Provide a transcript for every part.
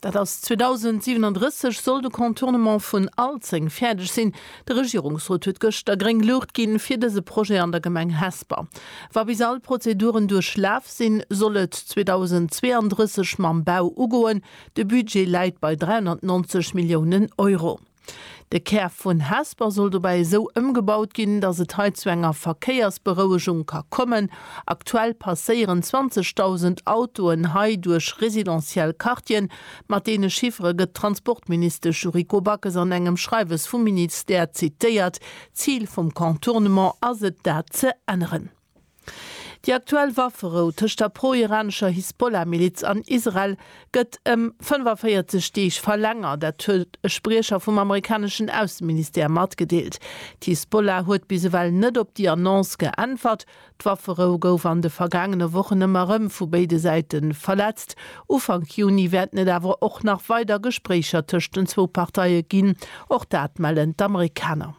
Dat ass 2037 soll de Contournement vun Alzeng fäerdeg sinn. De Regierungsrot huet gëschter gréng Luucht ginn, fir dëse Projet an der Gemeng Hesper. Wa bis all d'Prozeduren duerchlaf sinn, soll et 2032 mam Bau ugoen. De Budget läit bei 390 Milliounen Euro. De Kär vun Hesper soll dobäi esou ëmgebaut ginn, datt et hei zu enger Verkéiersberouegung ka kommen. Aktuell passéieren 20.000 Autoen hei duerch residentiell Quartieren. Mat deene Chiffere gëtt d'Transportministesch Yuriko Backes an engem Schreiwes vum Ministère zitéiert. D'Zil vum Contournement ass et, dat ze änneren. Déi aktuell Wafferou tëscht der pro-iranescher Hisbollah-Miliz an Israel gëtt ëm 45 Deeg verlängert. Dat huet e Spriecher vum amerikaneschen Ausseministère matgedeelt. D'Hisbollah huet bis ewell net op déi Annonce geäntwert. D'Wafferou gouf an de vergaangene Wochen ëmmer erëm vu béide Säite verletzt. Ufank Juni wäerten et awer och nach weider Gespréicher tëscht den zwou Parteie ginn, och dat mellen d'Amerikaner.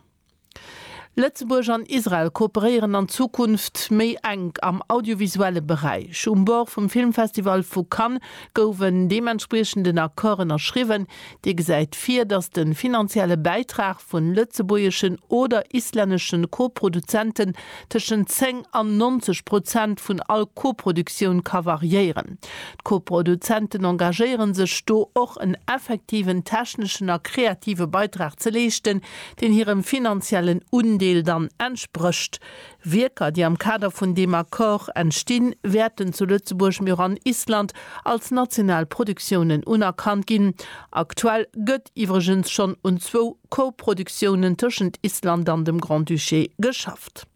Lëtzebuerg an Israel kooperéieren an Zukunft méi enk am audiovisuelle Beräich. Um Bord vum Filmfestival vu Cannes gouf en deementspriechenden Accord ënnerschriwwen, dee gesäit vir, datt de finanzielle Bäitrag vu lëtzebuergeschen oder islännesche Koproduzenten tëschent 10 an 90 Prozent vun all Koproduktioun ka variéieren. D'Koproduzenten engagéiere sech do och en effektiven techneschen a kreative Beitrag ze leeschten, deen hirem finanziellen Undeel dann entsprécht. Wierker, déi am Kader vun deem Accord entstinn, wäerten zu Lëtzebuerg, mee och an Island als national Produktiounen unerkannt ginn. Aktuell gëtt iwwregens schonn un zwou Co-Produktiounen tëschent Island an dem Grand-Duché geschafft.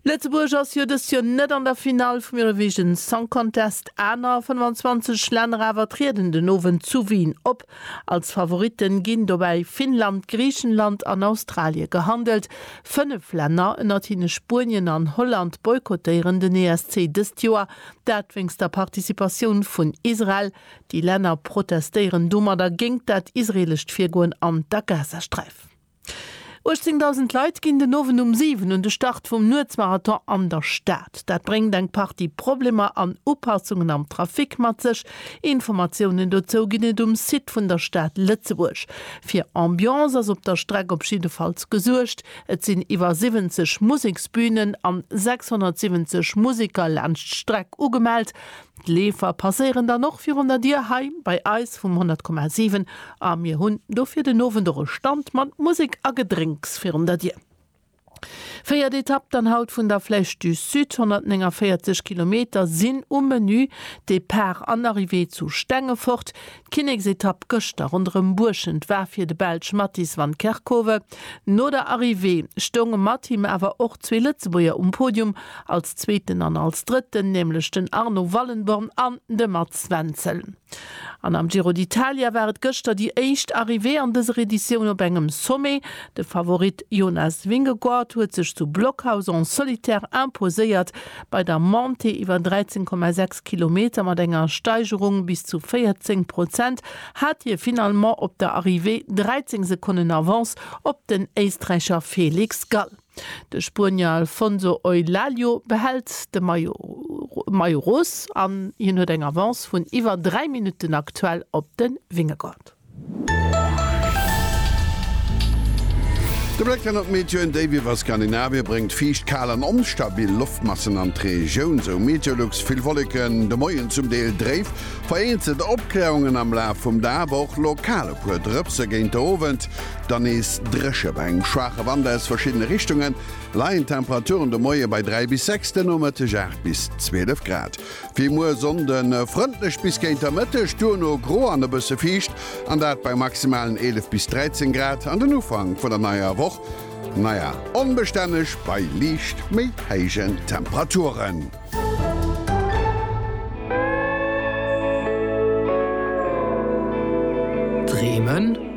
Lëtzebuerg ass jo dëst Joer net an der Finall vum Eurovision Song Contest, aner 25 Länner awer trieden den Owend zu Wien op. Als Favoritte ginn dobäi Finnland, Griichenland an Australie gehandelt. Fënnef Länner, ënnert hinne Spuenien an Holland, boykottéieren den ESC dëst Joer, dat wéinst der Participatioun vun Israel. Déi Länner protestéieren domadder géingt dat israeelescht Virgoen an der Gazasträif. 18.000 Leit ginn den Owend um 7 un de Start vum Nuetsmarathon an der Stad. Dat bréngt eng Partie Problemer an Upassungen am Trafic mat sech. Informatiounen dozou ginn et um Site vun der Stad Lëtzebuerg. Fir Ambiance ass op der Streck op jiddefalls gesuergt. Et sinn iwwer 70 Museksbünen an 670 Museker laanscht d'Streck ugemellt. D'Leefer passéieren dann och virun der Dier hei bei eis vum 100,7 a mir hunn do fir den Owend och e Stand mat Musek a Gedrénks virun der Dier. Véiert Etapp dann haut vun der Flèche du Sud, 149 Kilometer sinn um Menü, Depart an Arrivée zu Stengefort. D'Kinneksetapp gëschter ronderëm Buerschent war fir de Belsch Mattis van Kerckhove. No der Arrivée stounge mat him awer och zwee Lëtzebuerger um Podium, als Zweeten an als Drëtten, nämlech den Arno Wallenborn an de Mats Wenzel. An am Giro d'Italia war et gëschter déi éischt Arrivée an dëser Editioun op engem Sommet. De Favorit Jonas Vingegaard huet sech zu Blockhaus en solitaire imposéiert. Bei der Montée iwwer 13,6 Kilometer mat enger Steigerung bis zu 14 Prozent hat hie finalement op der Arrivée 13 Sekonnen Avance op den Éisträicher Felix Gall. De Spuenier Alfonso Eulaglio behält de Maillot Rose an hien huet eng Avance vun iwwer 3 Minutten aktuell op de Vingegaard. De Bléck hannert d'Meteoen, Déif iwwer Skandinavien bréngt fiicht, kal an onstabil Loftmassen an d'Regioun, sou Meteolux. Vill Wolleken, de Moien zum Deel dréif, vereenzelt Opkläerungen am Laf vum Dag, awer och lokal e puer Drëpse géint de Owend. Dann nees dréche bei engem schwaache Wand aus verschiddene Richtungen, leien d'Temperaturen de Moie bei 3 bis 6, de Nomëtteg 8 bis 12 Grad. Wéi muer Sonnden, frëndlech bis géint der Mëtteg, duerno gro an e bësse fiicht, an dat bei maximalen 11 bis 13 Grad. An den Ufank vun der neier Woch, naja, onbestänneg bei liicht méi héijen Temperaturen. Dreemen?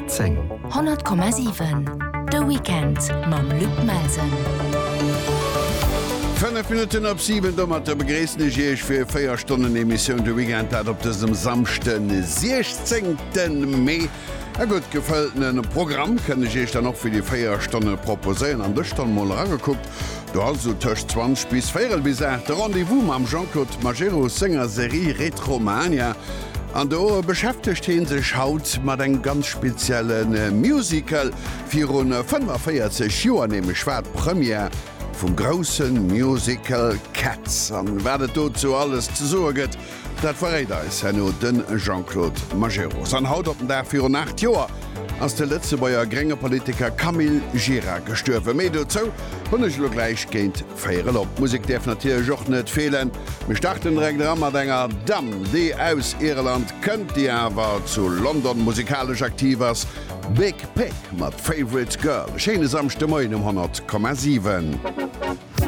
10. 100,7 De Weekend mam Luc Melsen. 5 Minutten op 7. Domatter begréissen ech Iech fir 4 Stonnen Emissioun de Weekend, dat op dësem Samschden, de 16. Mee. E gutt gefëlltene Programm kënnt ech Iech dann och fir déi 4 Stonne proposéieren. An dës Stonn mol eragekuckt, do ass esou tëscht 20 bis véierel bis 8 de Rendez-vous mam Jean-Claude Majerus senger Serie Retromania. An do beschäftegt hien sech haut mat engem ganz spezielle Musical. Viru 45 Joer nämlech war d'Première vum grousse Musical Cats. An wat et dozou alles ze soe gëtt, dat verréit eis herno de Jean-Claude Majerus. An haut op den Dag virun 8 Joer ass de Lëtzebuerger grénge Politiker Camille Gira gestuerwen. Méi dozou hunn ech elo gläich géint Véierel op. D'Musek däerf natierlech och net feelen. Mir starten direkt era mat enger Damm, déi aus Irland kënnt, déi awer zu London musikalesch aktiv ass, Big Pig mat Favourite Girl. E schéine Samschdemoien um 100,7.